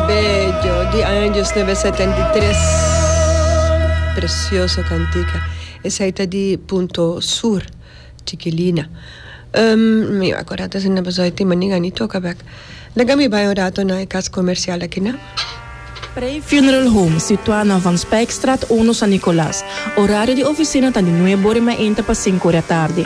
Bello di Anjos Number setenta i tres precioso cantica esai ta di punto sur Chikilina mi a corda ta asina pasobra tin manin a ni toca bek laga mi bay un rato na e cas comercial akina. Prey Funeral Home situá na Van Spijkstraat uno San Nicolas. Horario di oficina ta di nuebe ora y mainta pa cinco ora tardi.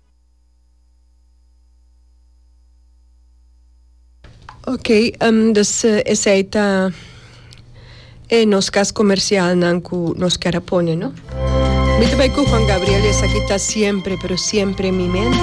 Okay dus esei ta e nos kas komersialnan ku nos kier a pone no. Mi ta bai ku Juan Gabriel esaki ta siempre pero siempre en mi mente.